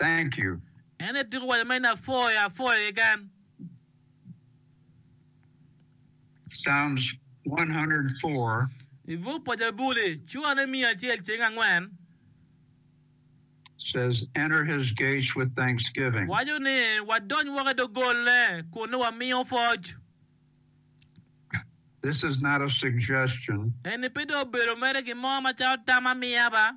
Thank you. En etyeko waco ma in apwoyo apwoyo keken. Psalms 104. I buk pa Jabuli, cura ne miya acel ceng angwen. Says, Enter his gates with thanksgiving. Waco ni, Wadony woko i dogolne kun nongo wamiyo pwoc. This is not a suggestion. Eni pe dong obedo mere gin mo macalo tam ma miya ba.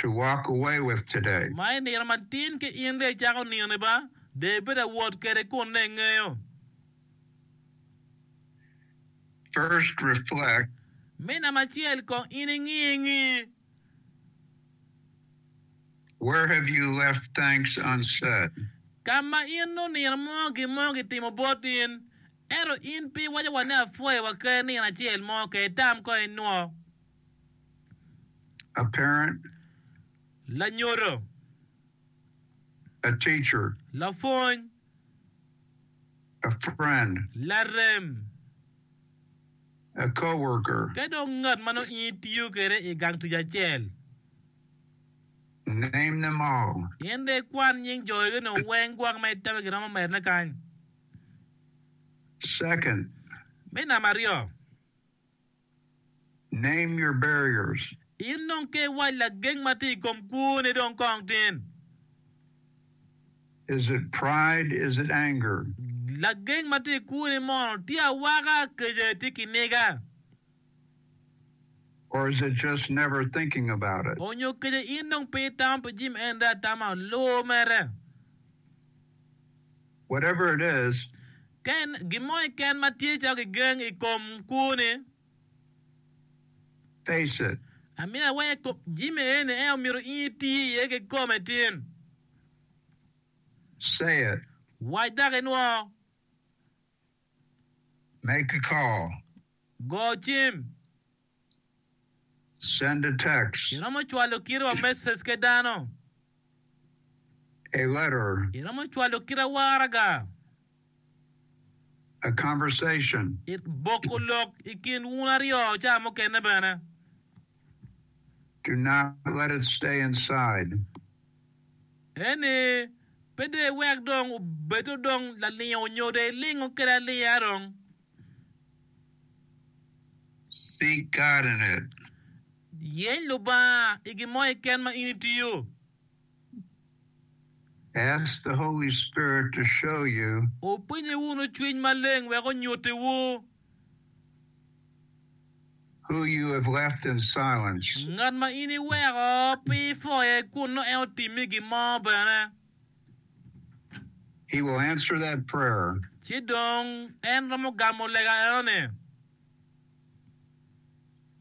to walk away with today. Ma i nino matin ki in dong icako nino ba, dong ibedo awot kede kun dong ingeyo. First reflect. Me namba acel kong in ingi engi. Where have you left thanks unsaid. Ka ma in nongo nino mo gin mo kitimo bot in, ento in pe iwaco wa ni apwoyo wa kadi nino acel mo ka itam ko inwo. A parent. Lanyodo. A teacher. Lapwony. A friend. Larem. A co-worker. Ka dong ngat ma nongo in itiyo kwede i gang tic acel. Name them all. In rik kwan nying jo egoni weng gwok ma itemo giromo medone kany. Second. Me namba aryo. Name your barriers. In dong ke iwac lageng ma tye i kom kwoni dong kong tin. Is it pride? Is it anger? Lageng ma tye i kwoni mono tye awaka, kica, tye kiniga? Or is it just never thinking about it? Onyo kica in dong pe itamo pi jami ento atama luwo mere? whatever it is. Ken, gin mo keken ma tye calo kigeng i kom kwoni. Face it. Amito awaye i kom Jimmy eni, en omito in iti iye kikome tin. Say it. Wac dok inwoo. Make a call. Go cim. Iromo cwalo kitewa me cece dano. Iromo cwalo kite waraga. Boko lok i kin wun aryo caa mukene bene. Eni pe dong iwek dong obed dong lalingo nyo dong ilingo kwede alinga dong. Seek God in it. Yeny Lubanga i gin mo keken ma in itiyo. Ask the Holy Spirit to show you. Wupinye wunu Cwiny Maleng wek onyutiwu. Who you have left in silence. Ngat ma in iweko pi ifoye kun nongo en otimmi gin mo bene. He will answer that prayer. Ci dong En romo gamo lega enoni.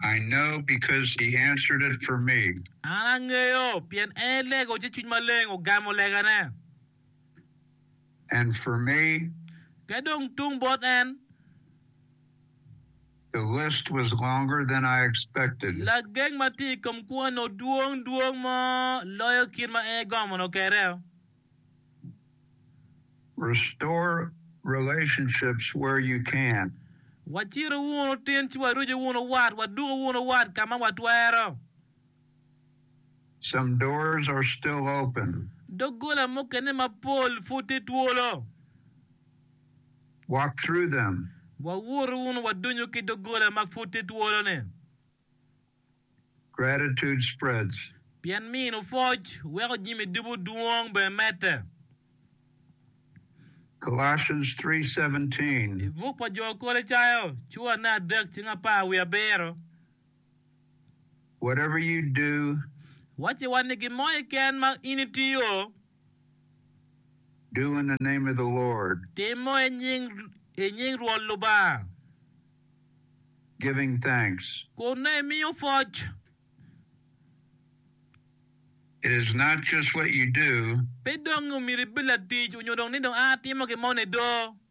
I know because He answered it for me. An angeyo pien En elego ci Cwiny Maleng ogamo legane. And for me. Ka dong tung bot En. Lageng ma tye i kom kwone odwong dwong mo loyo kit ma en egongo mondo okere. Waciru wunu tin ci warucu wunu wat, waduku wunu wat ka ma watwero. Doggola mukene mapol pud tye twolo. Wawot wunu wadonyo ki doggola ma pud tye twolo-ni. Pien mino pwoc weko jami ducu dwong bene medde. I buk pa Jo Kolocayo, curane adek cing apar wiye abiro. whatever you do. Wacci wa ni gin mo keken ma in itiyo. Do in the name of the Lord. Tim mo i nying, i nying Rwot Lubanga. Giving thanks. Kun nongo imiyo pwoc. It is not just what you do. Pe dong omyero ibed latic onyo dong ni dong a atimo gin mo nido.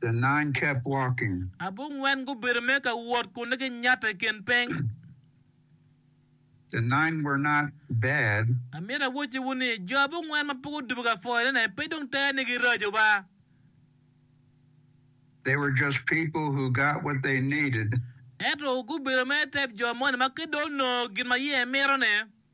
The nine kept walking. Abongwen gubedo me ka wot kun gi nyato i kin piny. The nine were not bad. Amito awocci wu ni, jo abongwen ma pe gudubo ka pwoyone ne pe dong tera ni giraco ba. They were just people who got what they needed. Ento gubedo me tep jo moni ma ki dong onongo gin ma iye mito ne.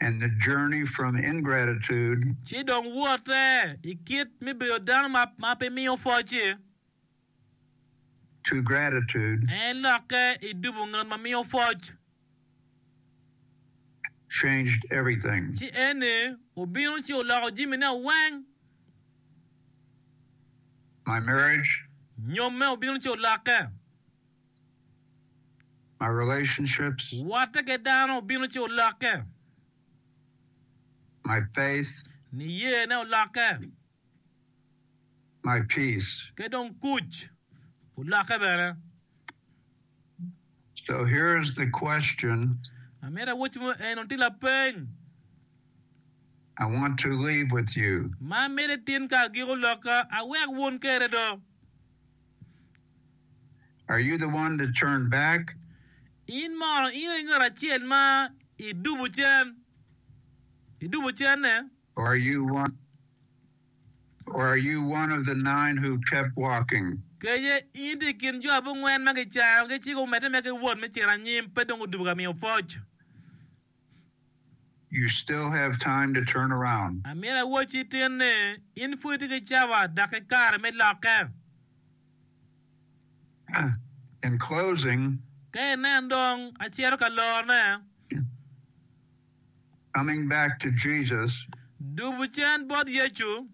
and the journey from ingratitude. Ci dong wote i kit me bedo dano ma pe miyo pwoc-ci. To gratitude. En ilokke i dubo ngat ma miyo pwoc. Changed everything. Ci en-ni obino ci oloko jimine weng. My marriage. Nyomme obino ci olokke. Watte ki dano obino ci olokke. Niyene olokke. Ki dong kuc olokke bene. Amito awoc mo eno tye lapeny. Ma amito itin ka agiko lokka awek wun kede do. Are you the one that turned back? In mono in aye ngat acel ma idubo cen, idubo cenne? Or are you one, or are you one of the nine who kept walking? Kece, In itye i kin jo abongwen ma kicayogi ci gumedde mere ki wot me cito anyim, pe dong gudubo ka miyo pwoc? You still have time to turn around. Amyero awacci tin ni, in pud itye ki cawa dok ki kare me lokke. In closing. Ka inen dong acito ka lorone. Coming back to Jesus. Dubu cen bot Yecu.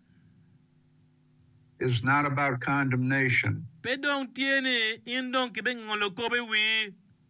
Is not about condemnation. Pe dong tye ni in dong kibingengo lokobo i wii.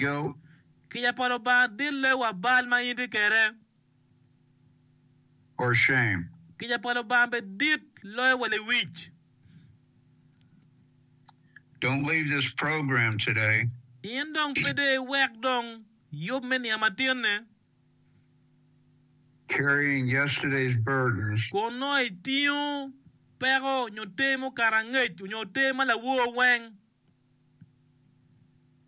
Go. Kica pa Lubanga dille wa bal ma in tye kede. Or shame. Kica pa Lubanga be dit loyo wa lewic. Don't leave this program today. In dong pe de iwek dong yub me niang matin-ni. Carrying yesterday's burdens. Kun nongo itingo peko nyo te mukato angec nyo te ma lawor weng.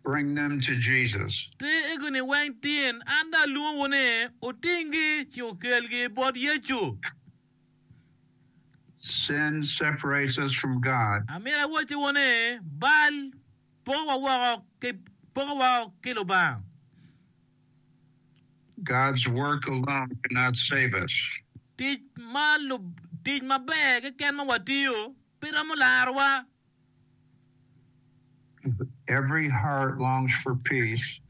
Bring them to Jesus. Ti igini weng tin, an dong alwongowu ni, wutinggi ci wukelgi bot Yecu. Sin separates us from God. Amito awottiwu ni, bal pokowa woko ki poko woko ki Lubanga. God's work alone cannot save us. Tic ma tic maber keken ma watiyo pe romo larowa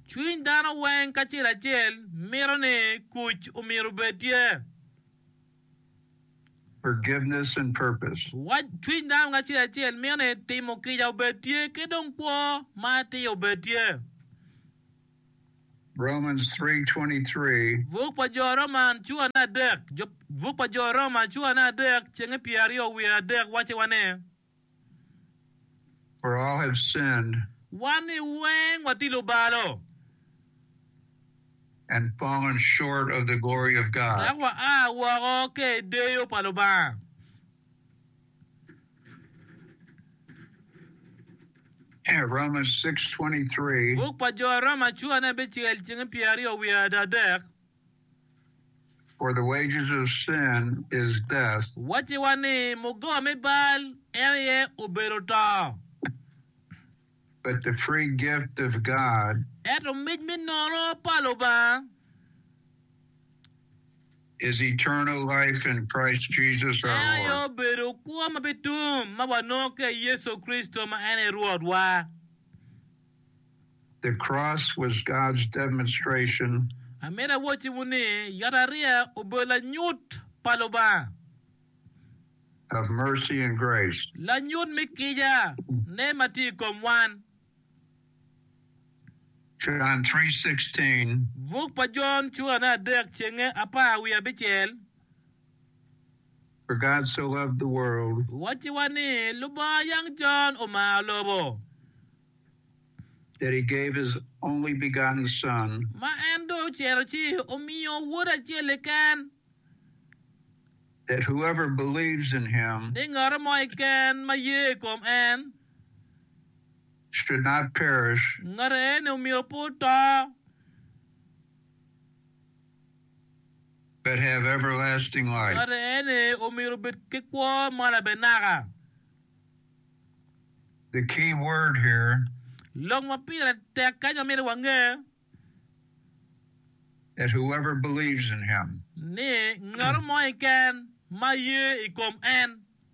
Cwiny dano weng kacel acel mito ni kuc omyero obed tye. Cwiny dano kacel acel mito ni timo kica obed tye ki dong kwo ma atir obed tye. Buk pa Jo Roma cura ne adek cenge pyeraryo wiye adek wacciwa ni. for I have sinned. Wan i weng watye lubalo. and fallen short of the glory of God. Dok wa a woko ka i deyo pa Lubanga. And Romans 6:23. Buk pa Jo Roma cwa ni abicel ceng pyeraryo wiye adadek. for the wages of sin is death. Wacciwa ni muggowa me bal en aye obedo to. But the free gift of God. Ento mic me nono pa Lubanga. Is eternal life in Christ Jesus our Lord. En aye obedo kwo ma bitum ma wanongo ki i Yecu Kricito ma en aye Rwotwa. The cross was God's demonstration. Amina awacciwu ni, yatariya obedo lanyut pa Lubanga. Of mercy and grace. Lanyut me kica ne ma tye i kom wan. John three sixteen. Buk pa Jon cura ne adek cenge apar wiye abicel. For God so loved the world. Wacciwa ni Lubanga yang con omaro lobo. That he gave his only begotten Son. Ma en dong ocito ci omiyo Wode acel keken. That whoever believes in him. Ni ngat mo keken ma ye i kom en. Should not perish. Ngat eni omyero pe oto. but have everlasting life. Kadi en aye omyero obed ki kwo ma labenaka. The key word here. Lok ma pire tek kany ma myero wange. That whoever believes in him. Ni ngatu mo keken ma ye i kom en.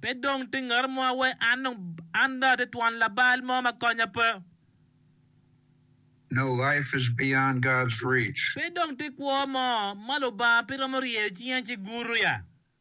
Pe dong tye ngat mo a wai an dong an dong atye twon labal mo ma konya pe. Pe dong tye kwo mo ma Lubanga pe romo ryeyo cinge ci guruya.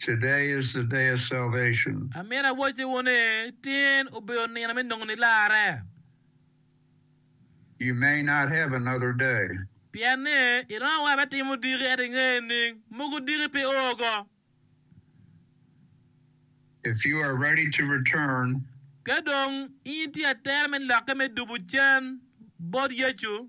Today is the day of salvation. Amyero awacce wo ni, Tin obedo nino me nongo nilarre. You may not have another day. Pien ni iromo wa me timo diki ento ingeyo ning mogo diki pe oo ko. If you are ready to return. Ka dong in itye atera me lokke me dubu cen bot Yecu,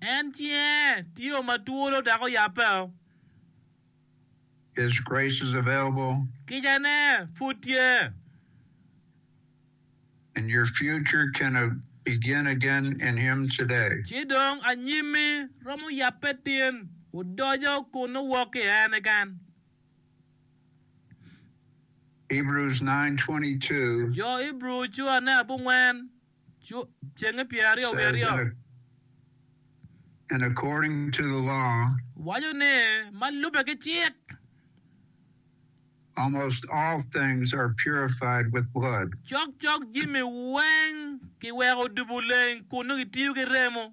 En cinge tye o ma twolo dok oyabbe o. Kicane pud tye. Ci dong anyimmi romo yabbe tin, odoco kun owok ki i en keken. Jo Ibru cuane abongwen, cenge pyeraryo wiye aryo, waco ni, ma lubbe ki cik, cokcok jami weng kiweko odubo leng kun nongo kitiyo ki remo.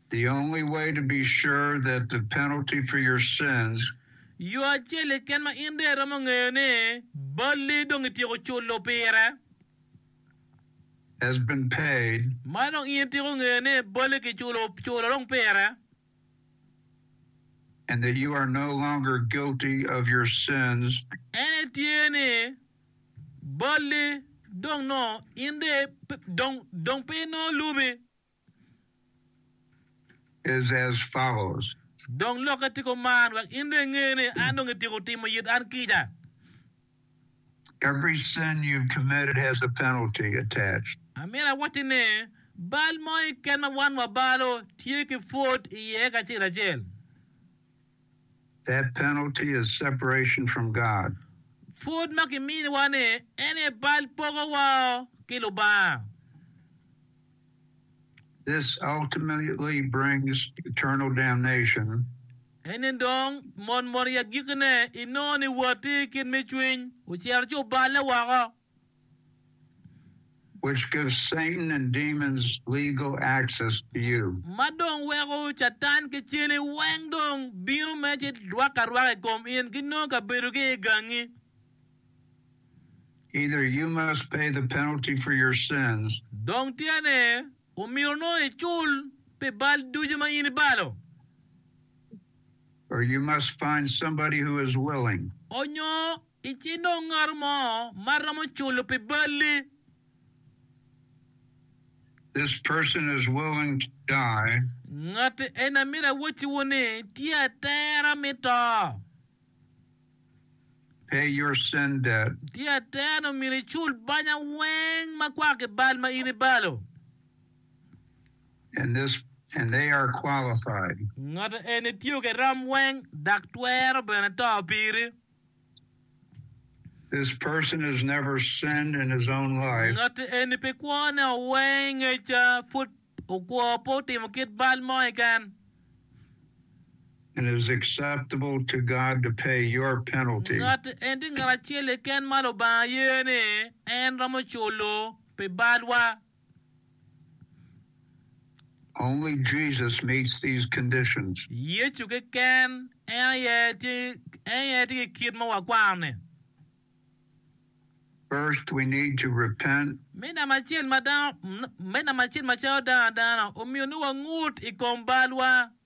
The only way to be sure that the penalty for your sins. Yo acel keken ma in dong iromo ngeyo ni balli dong ityeko culo pire. Has been paid. Ma dong in ityeko ngeyo ni balli kiculo, culo dong pire. And that you are no longer guilty of your sins. En aye tye ni balli dong nongo in dong, dong, dong pe inongo lubi. is as follows. Dong lokke ticko man, wek in dong inge ni an dong ityeko timo it an kica. Every sin you've committed has a penalty attached. Amyero awacci ni, bal mo keken ma wan wabalo tye ki pwod iye kacel acel. That penalty is separation from God. Pwod ma kiminiwa-ni en aye bal pogowa ki Lubanga. This ultimately brings eternal damnation. Eni dong mot mot i agikine inongo ni woti kit me cwiny ocito ci oballe woko. which gives Satan and demons legal access to you. Ma dong weko Catan ki cene weng dong bino me ci rwak arwaka i kom in ki nongo kabedogi i gangi. Either you must pay the penalty for your sins. Dong tye ne, omyero nongo icul pi bal ducu ma in ibalo. Or you must find somebody who is willing. Onyo I ci nongo ngat mo ma romo culo pi balli. This person is willing to die. Ngatti eni amito awacciwu ni tye atera mi to. Pay your sin debt. Tye atera ni omyero icul banya weng ma kwako ki bal ma in ibalo. And this and they are qualified. Ngatti eni tye ki rom weng dak twero bene to piri. Ngatti eni pi kwone owee i ngeca, pud okwo pe otimo kit bal mo keken. Ngatti eni tye ngat acel keken ma Lubanga ye ni en romo culo pi balwa. Yecu keken en aye tye ki kit ma wakwaro-ni. Me namba acel, macalo dano adana, omyero nongo wangut i kom balwa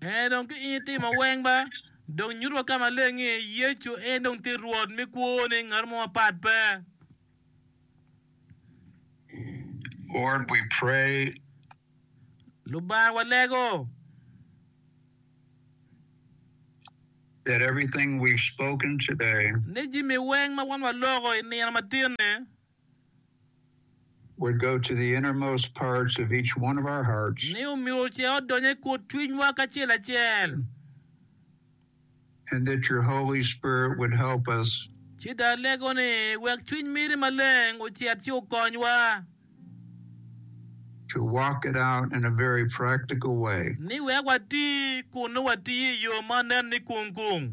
En dong ki in itimo weng ba, dong nyut wa ka maleng ni Yecu en dong tye Rwot me kwoni, ngat mo mapat pe. Lubanga walego. Ni jami weng ma wan waloko i nino matin ni. ni omyero ocer odony i kut cwinywa kacel acel, ci dong alego ni wek Cwiny miri Maleng ocit ci okonywa ni wek wati kun nongo watiyo i yo ma nen ni kung kung.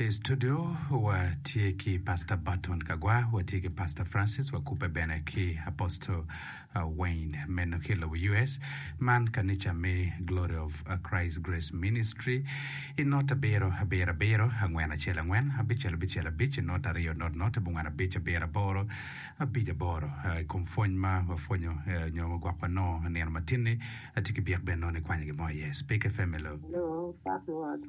I studio wa tye ki Pastor Burton Kagwa, wa tye ki Pastor Francis wa kubbe bene ki Apostle uh, Wayne meno ki lobo US. Man kanica me Glory of uh, Christ Grace Ministry i not abiro abiro abiro angwen acel angwen abicel abicel abic i not aryo not not abongwen abic abiro aboro abic aboro. Uh, I kom pwony ma wapwonyo uh, nyo ma gwok wanongo nino matinni atye ki byek bene nongo ikwanyo gin mo aye. Speak FM hello. Hello, Pastor Word.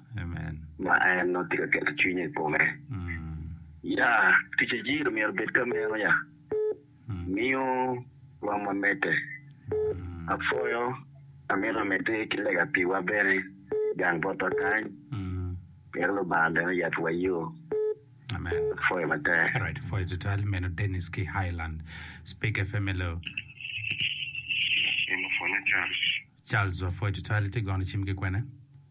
ma en nongo tye ka keto cwinye i kome. Ya, tic a Jiro myero obed ka meno. Ya, miyo rwom wa medde. Apwoyo, amito amedde ki lega piwa bene, gang botwa kany, pien Lubanga bene oyabbiwa yo. Apwoyo matek.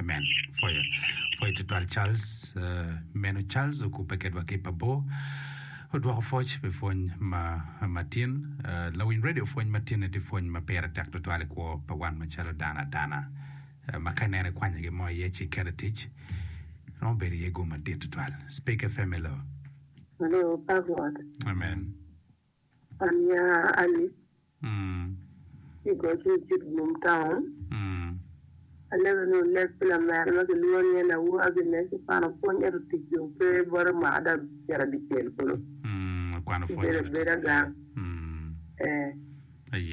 Amen. Pwoyo. Pwoyo tutwal Charles. Uh, meno Charles okubbe kedwa ki pabo. Odwoko foc pe pwony ma matin. Uh, lawiny radio pwony matin eti pwony ma pire tek tutwal kwo pa wan macalo dana dana. Uh, ma ka nene kwanya gi mo iye ci kere tic. Romo bedo iye go madit tutwal. Speak FM hello. Hello, Pak Rwot. Amen. Ania Alice, i goc me Kitgum Taun. Alebe ni oleg pi lamera ma kilwongo ni Elawu Agnes i kwano pwony ento ticce ope bote mwaka ada ocito dyecel kulu. Obedo abeda gang. Ee,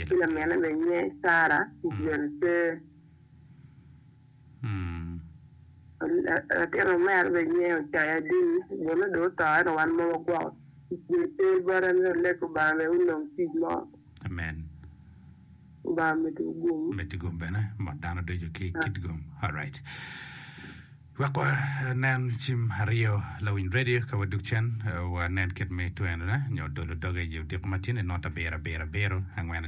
ki lamine bene nyiye Sarah, ticce bene pe. Latinwa me aryo bene nyinge Ocaya Dini, bone dong oto ento wan ma wagwoko tic pe bot en bene oleg Lubanga me onong tic mo. Amen. Lubanga omeddi wu gum. Omeddi gum bene mot dano ducu ki kit gum. Alright. Wek wa nen cim aryo lawiny radio ka waduk cen wa nen kit me twenone nyo dolo doge i odiko matini nota bira bira biro angwen